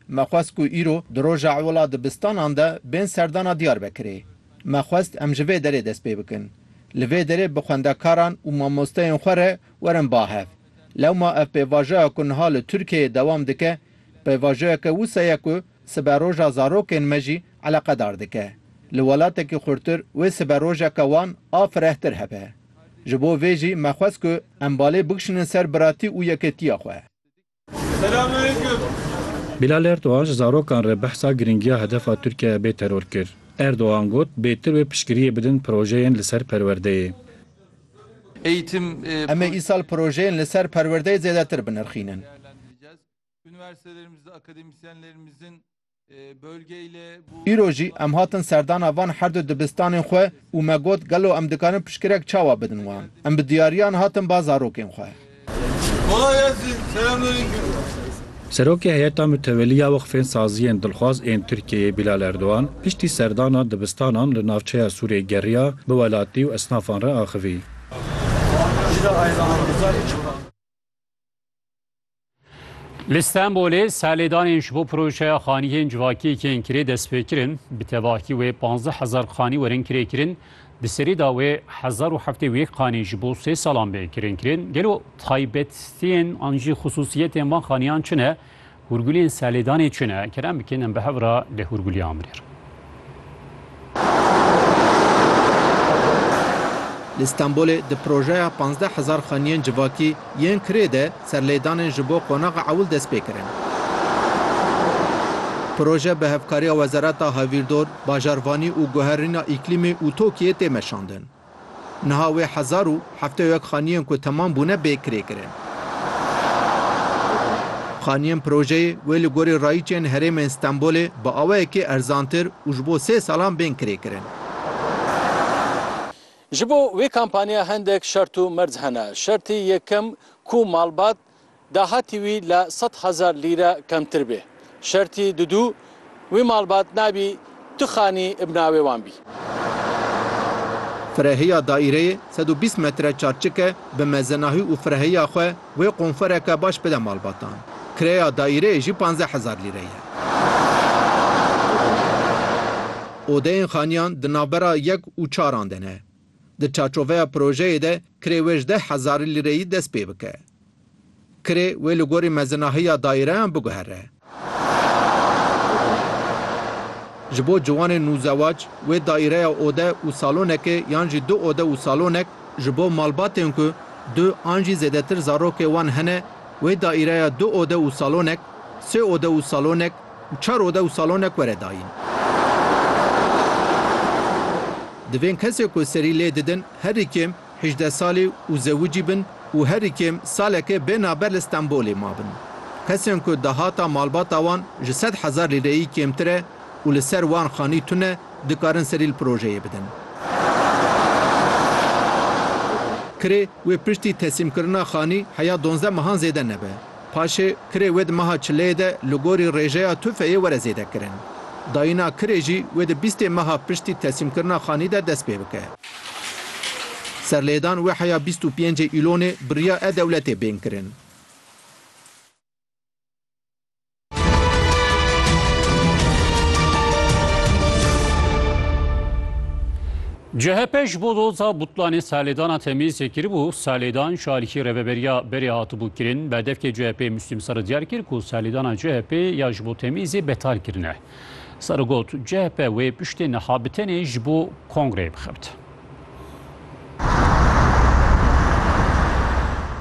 Me xwest ku îro di roja ewila dibistanan de bên serdana Diyarbekirê. Me xwest em ji vê derê dest pê bikin. Li vê derê bi xwendekaran û mamosteyên xwe re werin ba hev. Lewma ev pêvajoya ku niha li Tirkiyeyê dewam dike, pêvajoyeke wisa ye ku siberoja zarokên me jî eleqedar dike. Li welatekî xurtir wê siberojeke wan a firehtir hebe. Ji bo vê jî me xwest ku em balê bikişînin ser biratî û yekêtiya xwe. Bilal Erdogan ji zarokan re behsa girîngiya hedefa Tirkiye ya bê teror kir. Erdogan got, Bêtir wê piştgiriyê bidin projeyên li ser perwerdeyê. Em ê îsal projeyên li ser perwerdeyê zêdetir binirxînin. Îro jî em hatin serdana van her du dibistanên xwe û me got gelo em dikarin piştgirek çawa bidin wan. Em bi diyariyan hatin ba zarokên xwe. Serokê Heyeta Mutewelî ya Weqfên Saziyên Dilxwaz ên Tirkiyeyê Bilal Erdogan piştî serdana dibistanan li navçeya Sûrê geriya bi welatî û esnafan re axivî. Li Stenbolê serlêdanên ji bo projeya xanîyên civakiyê yên kirê destpêkirin. Bi tevahî wê panzdeh hezar xanî werin kirêkirin. Di serî de wê hezar û heftê û yek xanî ji bo sê salan bên kirêkirin. Gelo taybetiyên an jî xisûsiyetên van xanîyan çi ne? Hûrgulên serlêdanê çi ne? Kerem bikin em bi hev re li Hûrgulê amrêr. Li Stenbolê di projeya pazdeh hezar xaniyên civakî yên kirê de serlêdanên ji bo qonaxa ewil dest pê kirin. Proje bi hevkariya Wezareta Hevîrdor, Bajarvanî û Guherîna Îklîmê û TOKİ'yê tê meşandin. Niha wê hezar û heftê û yek xaniyên ku temam bûne bê kirê kirin. Xaniyên projeyê wê li gorî rayiçên herêmên Stenbolê bi awayekî erzantir û ji bo sê salan bên kirê kirin. Ji bo wê kampaniya hendek şert û merc hene. Şertî yekem ku malbat dahatî wî li sed hezar lîre kemtir bê. Şertî Dudû, Wî malbat nabî tu xanî bi navê wan bî. Firehiya daîreyê sed û bîst metre çarçik e, bi mezenahî û firehiya xwe wê qonfereke baş bide malbatan. Kireya daîreyê jî panzdeh hezar lîre ye. Odeyên xaniyan di navbera yek û çaran de ne. Di çarçoveya projeyê de kirê wê ji deh hezar lîreyî dest pê bike. Kirê wê li gorî mezinahiya daîreyan biguhere. Ji bo ciwanên nûzewac wê daîreya ode û salonekê yan jî du ode û salonek, ji bo malbatên ku du an jî zêdetir zarokê wan hene wê daîreya du ode û salonek, sê ode û salonek, û çar ode û salonek were dayîn. Divên kesê ku serî lê didin herî kêm hîjdeh salî û zewicî bin û herî kêm saleke bê naber li Stenbolê mabin. Kesên ku dahata malbata wan ji sed hezar lîreyî kêmtir e û li ser wan xanî tune dikarin serî li projeyê bidin. Kirê wê piştî teslîmkirina xanî heya donzdeh mehan zêde nebe. Paşê kirê wê di meha çileyê de li gorî rêjeya tufeyê were zêdekirin. Dayîna kirê jî wê di bîstê meha piştî teslîmkirina xanî de dest pê bike. Serlêdan wê heya bîst û pêncê Îlonê bi riya e-Dewletê bên kirin. CHP ji bo doza butlanê serlêdana Temîzê kiribû, serlêdan ji alîkî rêveberiya berê hatibû kirin. Berdevkê CHP'ê Muslîm Sarı diyar kir ku serlêdana CHP'ê ya ji bo Temîzê betal kirine. Sarı got, CHP wê piştê niha bi tenê ji bo kongreyê bixebt.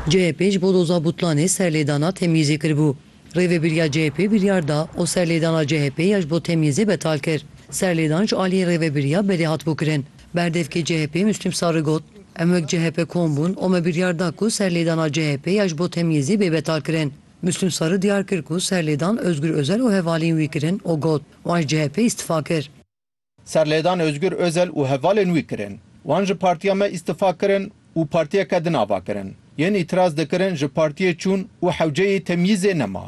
CHP ji bo doza butlanê serlêdana Temîzê kiribû. Rêvebiriya CHP'ê biryar da û serlêdana CHP'ê ya ji bo temyîzê betal kir. Serlêdan ji aliyê Rêvebiriya berê hatibû kirin. Berdevkê CHP'ê Muslîm Sarı got, Em wek CHP kom bûn û me biryar da ku serlêdana CHP'ê ya ji bo temyîzê bê betalkirin. Muslîm Sarı diyar kir ku serlêdan Ozgur Ozel û hevaliyên wî kirin û got, Wan ji CHP'ê îstifa kir. Serlêdan Ozgur Ozel û hevalên wî kirin. Wan ji partiya me îstifa kirin û partiyeke din ava kirin. Yên îtiraz dikirin ji partiyê çûn û hewceyê temyîzê nema.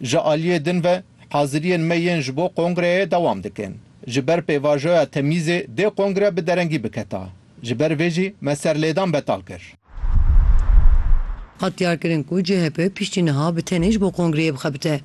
Ji aliyê din ve haziriyên me yên ji bo kongreyê dewam dikin. Ji ber pêvajoya temyîzê dê kongre bi derengî biketa. Ji ber vê jî me serlêdan betal kir. Hat diyarkirin ku chp piştî niha bi tenê ji bo kongreyê bixebite.